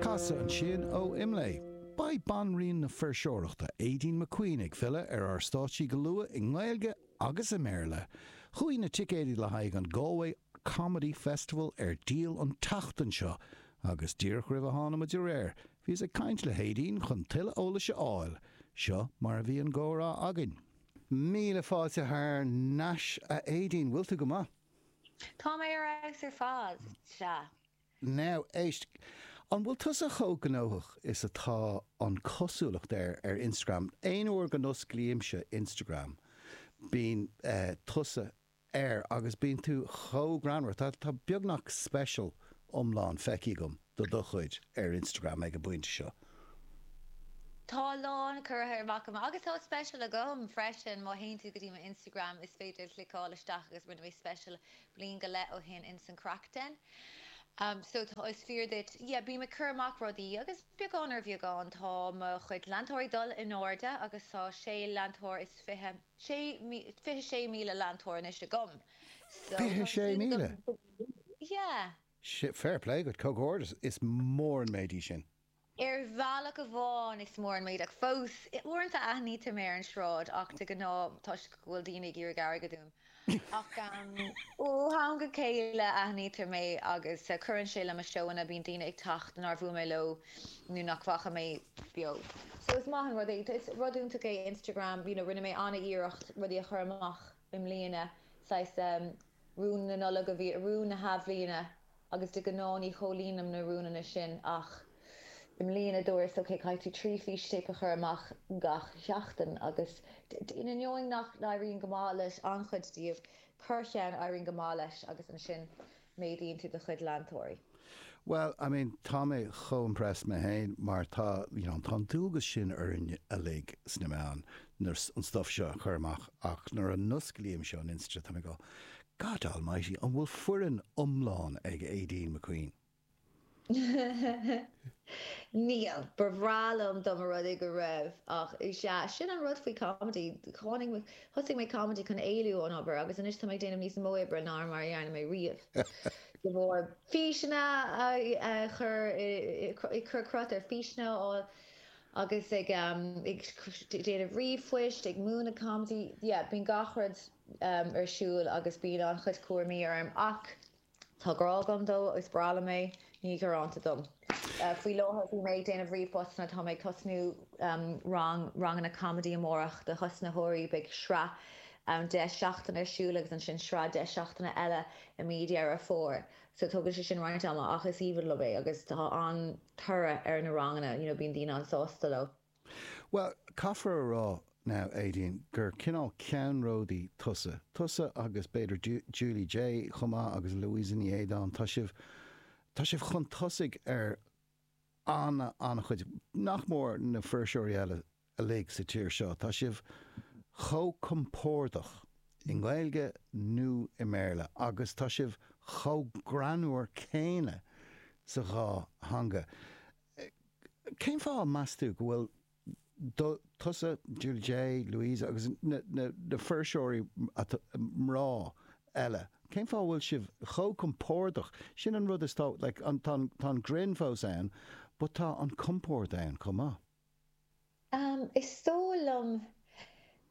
Casadh ansin ó Imlé. Beidh banríon na fuirseoireachta, Aideen McQueen, ag filleadh ar ár stáitsí go luath, i nGaeilge agus i mBéarla. Chuaigh na ticéidí le haghaidh an Galway Comedy Festival ar díol an tseachtain seo agus díreach roimh a tháinig muid ar aer, bhíos ag caint le hAideen chun tuilleadh eolais a fháil. Seo mar a bhí an comhrá againn. Míle fáilte thar n-ais, a Aideen. Bhfuil tú go maith? Tá mé ar fheabhas ar fad, sea. Now, éist. An bhfuil tusa chomh gnóthach is atá an cosúlacht air ar Instagram? Aon uair go n-osclaímse Instagram, bíonn tusa air agus bíonn tú chomh greannmhar. Tá beagnach special iomlán feicthe agam de do chuid ar Instagram ag an bpointe seo. Tá a lán curtha amach agam. Agus tá special agam freisin. Má théann tú go dtí m'Instagram, is féidir cliceáil isteach agus rinne mé special bliain go leith ó shin insan Craic Den so tá is fíor duit yeah bím ag cur amach rudaí agus beagán ar bheagán tá mo chuid leantóirí dul in airde agus tá sé leantóir is fiche sé fiche sé míle leantóir anois agam so fiche sé míle yeah fair play dhuit comhghairdeas is mór an méid é sin. Ar bhealach amháin is mór an méid, ach fós, uaireanta aithnítear mé ar an sráid, ach de ghnáth toisc go bhfuil daoine ag iarraidh airgid uaim. Ach ó am go chéile aithnítear mé agus cuireann sé le mo seóanna, bíonn daoine ag teacht nár bhuail mé leo nó nach bhfaca mé beo. So is maith an rud é, is rud iontach é Instagram, you know, rinne mé an-iarracht rudaí a chur amach i mbliana, saghas, Rún na Nollag a bhí, rún na hathbhliana agus de ghnáth ní chomhlíonaim na rúnanna sin ach i mbliana dúras ok, caithfidh tú trí fhístéip a chur amach gach seachtain agus in ainneoin nach n-éiríonn go maith le an-chuid díobh, corr-cheann, éiríonn go maith leis agus ansin méadaíonn tú do chuid leantóirí. Bhuel, I mean, tá mé chomh impressed mé féin mar tá, you know, tá an dualgas sin orainn uilig sna meáin nuair, an stuff seo a chur amach ach nuair a osclaímse an Insta tá mé ag rá, God almighty, an bhfuil foireann iomlán ag Aideen McQueen? Níl. Ba bhreá liom dá mba rud é go raibh ach, is ea, sin an rud faoi comedy, tháinig. Thosaigh mé Comedy chun éalú ón obair agus anois tá mé ag déanamh níos mó oibre ná mar a dhearna mé riamh. De bharr físeanna a chur, ag cur cruth ar físeanna a fháil agus ag déanamh ríomhphoist, ag múineadh Comedy, yeah, bíonn gach rud ar siúl agus bíonn an-chuid cúraimí orm ach Tá grá agam dó is breá liom é. Ní gearánta dom. Faoi láthair bhí mé ag déanamh ríomhphostanna. Tá mé ag tosnú rang ranganna comedy amárach do thosnaitheoirí. Beidh sraith ann deich seachtaine ar siúl agus ansin sraith deich seachtaine eile i mí Dheireadh Fómhair. So tógann sé sin roinnt ama ach is aoibhinn liom é agus tá an-toradh ar na ranganna, you know bíonn daoine an-sásta leo. Bhuel, caithfear a rá, now, Aideen, gur cineál ceannródaí tusa. Tusa agus, b'fhéidir, Julie Jay chomh maith agus Louisa Ní Éideáin, tá sibh, tá sibh chun tosaigh ar ana, an-chuid, nach mór, na fuirseoirí eile uilig sa tír seo. Tá sibh chomh compordach i nGaeilge nó i mBéarla agus tá sibh chomh greannmhar céanna sa dhá theanga. Cén fáth meas tú go bhfuil do, tusa, Julie Jay, Louise agus na fuirseoirí mná eile, cén fáth a bhfuil sibh chomh compordach, sin an rud is tá, like, tá an grinn fós ann but tá an compord ann chomh maith. Is dóigh liom,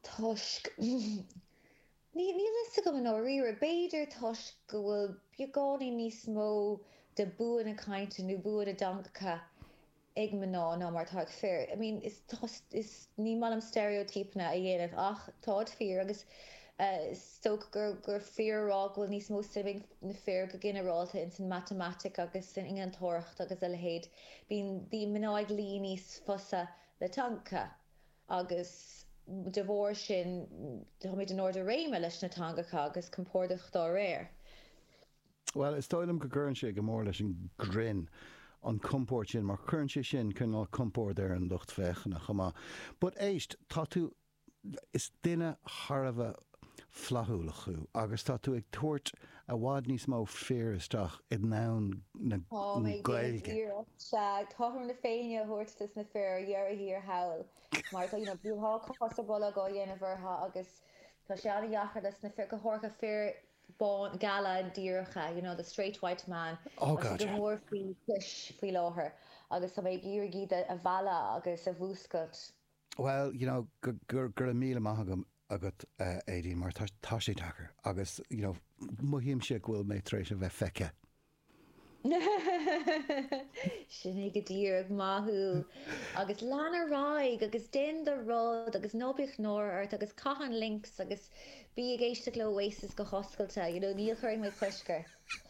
toisc, níl a fhios agam i ndáiríre, b'fhéidir toisc go bhfuil beagáinín níos mó de bua na cainte nó bua na dteangacha ag mná ná mar atá ag fir. I mean, is, ní maith liom steiréotípeanna a dhéanamh ach táid fíor agus is dócha gur fíor a rá go bhfuil níos mó suime ag na fir go ginearálta ins an matamaitic agus san innealtóireacht agus a leithéid. Bíonn mná ag luí níos fusa le teangacha agus de bharr sin táimid in ard a réime leis na teangacha agus compordach dá réir. Bhuel, is dóigh liom go gcuireann sé go mór leis an ghrinn, an compord sin, mar cuireann sé sin cineál compoird ar an lucht féachana chomh maith. But éist, tá tú Is duine thar a bheith flaithiúil thú agus tá tú ag tabhairt i bhfad níos mó fir isteach i ndomhan na Gaeilge. Táim ag déanamh iarracht, sea, cothrom na Féinne a thabhairt dos na fir ar dheireadh thiar thall mar tá, you know, bíonn tá cos ar bolg á dhéanamh orthu agus tá sé an-deacair dos na fir, go háirithe fir bána, geala, díreacha, you know, the straight white man. Oh god, yeah. Tá sé go mór faoi chois faoi láthair agus tá mé ag iarraidh iad a mhealladh agus a mhúscailt. Bhuel, you know, go, go, go raibh míle maith agam, agat, a Aideen, mar tá, tá sé deacair, agus, you know, mothaímse go bhfuil mé tar éis a bheith feicthe. Sin é go díreach, maith thú! Agus lean ar aghaidh, agus déan do rud, agus ná bíodh náire ort, agus caith an Lynx, agus bí ag éisteacht le Oasis go hoscailte, you know, ní chuirfidh mé cosc ort.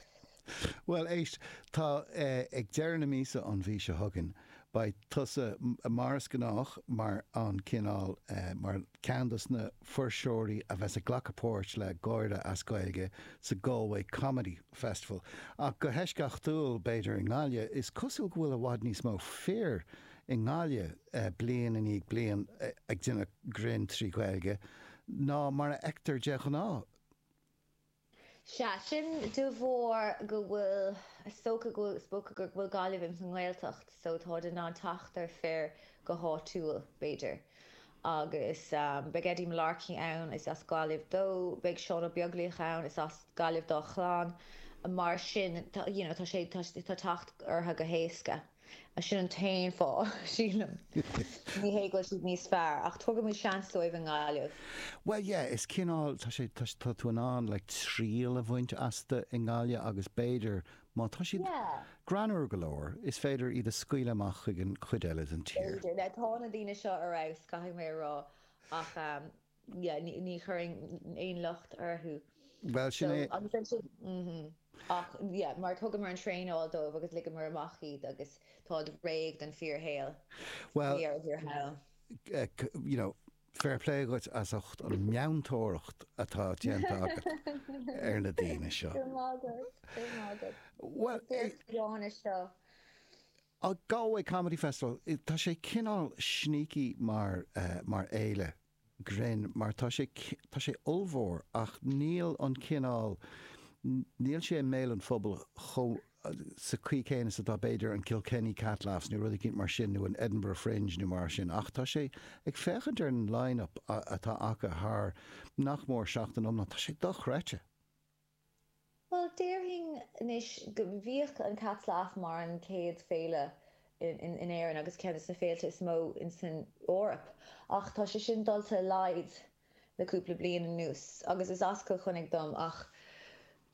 Bhuel, éist, tá ag deireadh na míosa an mhí seo chugainn, beidh tusa, mar is gnách, mar an cineál, mar cheann de na fuirseoirí a bheas ag glacadh páirt le gáire as Gaeilge sa Galway Comedy Festival. Ach go heisceachtúil, b'fhéidir, i nGaillimh, is cosúil go bhfuil i bhfad níos mó fir i nGaillimh, bliain i ndiaidh bliana, ag déanamh grinn trí Ghaeilge ná mar a fheictear de ghnáth. Sea, sin de bharr go bhfuil is dócha go, is dócha gur, go bhfuil Gaillimh ins an nGaeltacht so táid in ann teacht ar fir go háitiúil, b'fhéidir. Agus beidh Eddie Mullarkey ann, is as Gaillimh dó, beidh Seán Ó Beaglaoich ann, is as Gaillimh dá chlann, mar sin, you know, tá sé, tá teacht orthu go héasca. Sin an t-aon fáth, sílim. Ní hé go bhfuil siad níos fearr, ach tugaimid seans dóibh i nGaillimh. Bhuel, yeah, is cineál, tá sé, tá, tá tú in ann, like, triail a bhaint astu i nGaillimh agus b'fhéidir, má tá siad greannmhar go leor, is féidir iad a scaoileadh amach chuig an chuid eile den tír. B'fhéidir. Now, tá na daoine seo ar fheabhas, caithfidh mé a rá, ach. Ní chuirim aon locht orthu. Bhuel, sin é. Agus ansin, ach mar thugamar an traenáil dóibh agus ligeamar amach iad agus tá siad réidh don fíorshaol. We are here how? you know, fair play dhuit as ucht an meantóireacht atá déanta agat ar na daoine seo. Go raibh maith agat, go raibh maith agat. Bhfuil. Is beag fiáine seo. An Galway Comedy Festival, tá sé cineál sneaky mar, mar fhéile grinn mar tá sé, tá sé ollmhór ach níl an cineál, níl sé i mbéal an phobail chomh, sa chaoi chéanna is atá b'fhéidir an Kilkenny Cat Laughs nó rud eicínt mar sin nó an Edinburgh Fringe nó mar sin ach tá sé, ag féachaint ar an line-up atá acu thar nach mór seachtain iomlán, tá sé dochreidte. Bhuel, déarfainn anois go mbíodh an Cat Laughs mar an chéad féile in Éirinn agus ceann de na féilte is mó san Eoraip ach tá sé sin dulta i laghad le cúpla bliain anuas agus is as Cill Chainnigh dom ach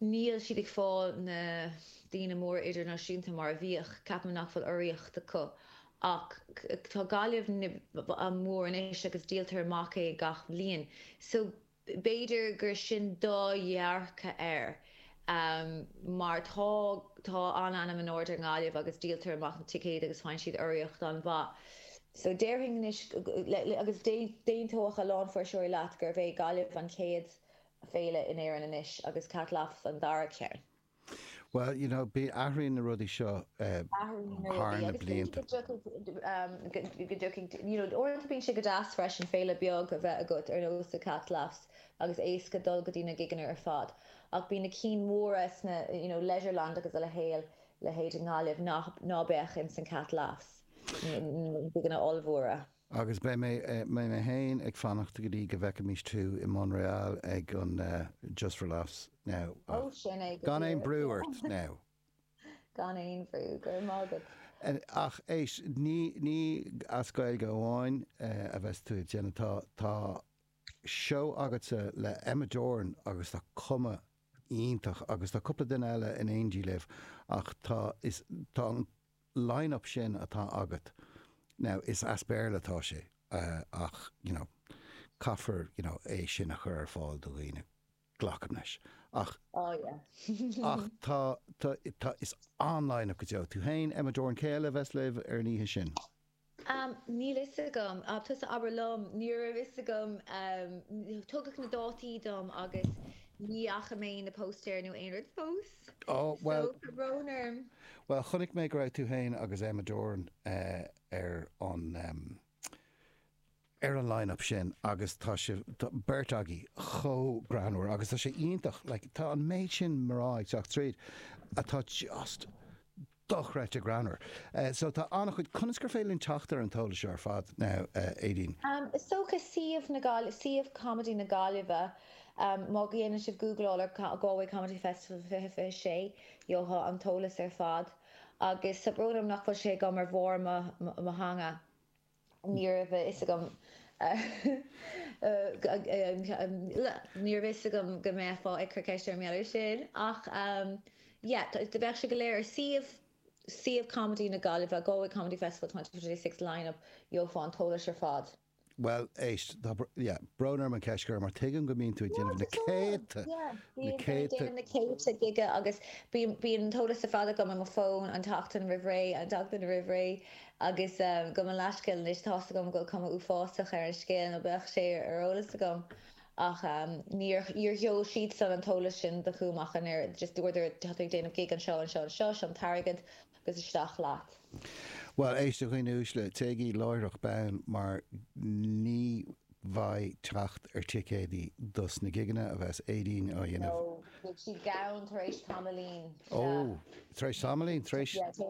níl siad ag fáilt na daoine móra idirnáisiúnta mar a bhíodh. Ceapaim nach bhfuil urraíocht acu ach tá Gaillimh mór anois agus díoltar amach é gach bliain so B'fhéidir gur sin do dhearcadh air mar tá tá an-ainm in airde ar Gaillimh agus díoltar amach na ticéid agus faigheann siad urraíocht an-mhaith. So déarfainn anois, agus d'aontódh a lán fuirseoirí leat, gurbh é Gaillimh an chéad féile in Éirinn anois agus Cat Laughs an dara ceann. Bhuel, you know, athraíonn na rudaí seo thar na blianta. You know, uaireanta bíonn sé go deas freisin féile bheag a bheith agat ar nós The Cat Laughs agus éasca dul go dtí na gigeanna ar fad ach bíonn na cinn mhóra sna, you know, Leisureland agus a leithéil, leithéid i nGaillimh ná beadh ins an Cat Laughs, na gigeanna ollmhóra. Agus beidh mé féin ag fanacht go dtí go bhfeicfimís tú i Montréal ag an Just for Laughs now Ó, ach sin é go gan aon díreach, bhrú ort yeah. now. Gan aon bhrú, go raibh maith agat. Ach éist, ní as Gaeilge amháin a bheas tú ag déanamh, tá seó agatsa le Emma Doran agus tá cuma iontach agus tá cúpla duine eile in éindí libh ach tá an line-up sin atá agat, now, is as Béarla atá sé ach, you know, caithfear, you know, é sin a chur ar fáil do dhaoine, glacaim leis, ach, Oh yeah. tá, tá, tá, is an-line-up go deo. Tú féin, Emma Doran, cé eile a bheas libh ar an oíche sin? Am, Níl 'fhios agam. Tusa abair liom. Ní raibh 'fhios agam. Tugadh na dátaí dom agus ní fhaca mé an póstaer nó aon rud fós. Ó, bhuel. So, tá brón orm. Bhuel, chonaic mé go raibh tú féin agus Emma Doran ar an ar an line-up sin agus tá sibh beirt agaibh chomh greannmhar agus tá sé iontach, like tá an méid sin mná ag teacht tríd atá just dochreidte greannmhar. So tá an-chuid, conas gur féidir linn teacht ar an t-eolas seo ar fad now, Aideen? Is dócha suíomh na Gaillimhe, suíomh Comedy na Gaillimhe, má dhéanann sibh googleáil ar Galway Comedy Festival 2026, gheofá an t-eolas ar fad agus tá brón orm nach bhfuil sé agam ar bharr mo theanga. Ní raibh a fhios agam Ní raibh a fhios agam go mbeifeá ag cur ceiste orm mar gheall air sin ach yeah beidh sé go léir ar suíomh suíomh comedy na Gaillimhe Galway Comedy Festival twenty twenty six lineup gheofá an t-eolas ar fad. Bhuel, éist, tá yeah brón orm an ceist a chur mar tuigim go mbíonn tú ag déanamh na céadta na céadta na céadta gig agus bíonn bíonn an t-eolas ar fad agam ar mo fón an tseachtain roimh ré an tseachtain roimh ré Agus gabh mo leathscéal anois, tá's agam go bhfuil cuma uafásach ar an scéal, nó bheadh sé ar eolas agam, ach níor sheol siadsan an t-eolas sin chugam ach an oiread, just dúradar, tá tú ag déanamh gig anseo, anseo, anseo, seo an t-airgead agus isteach leat. Bhuel, éist a dhaoine uaisle, téigí láithreach bonn mar ní bheidh teacht ar ticéadaí dos na gigeanna a bheas Aideen a dhéanamh. No, beidh siad gann tar éis tamaillín, sea. Ó, tar éis tamaillín, tar éis?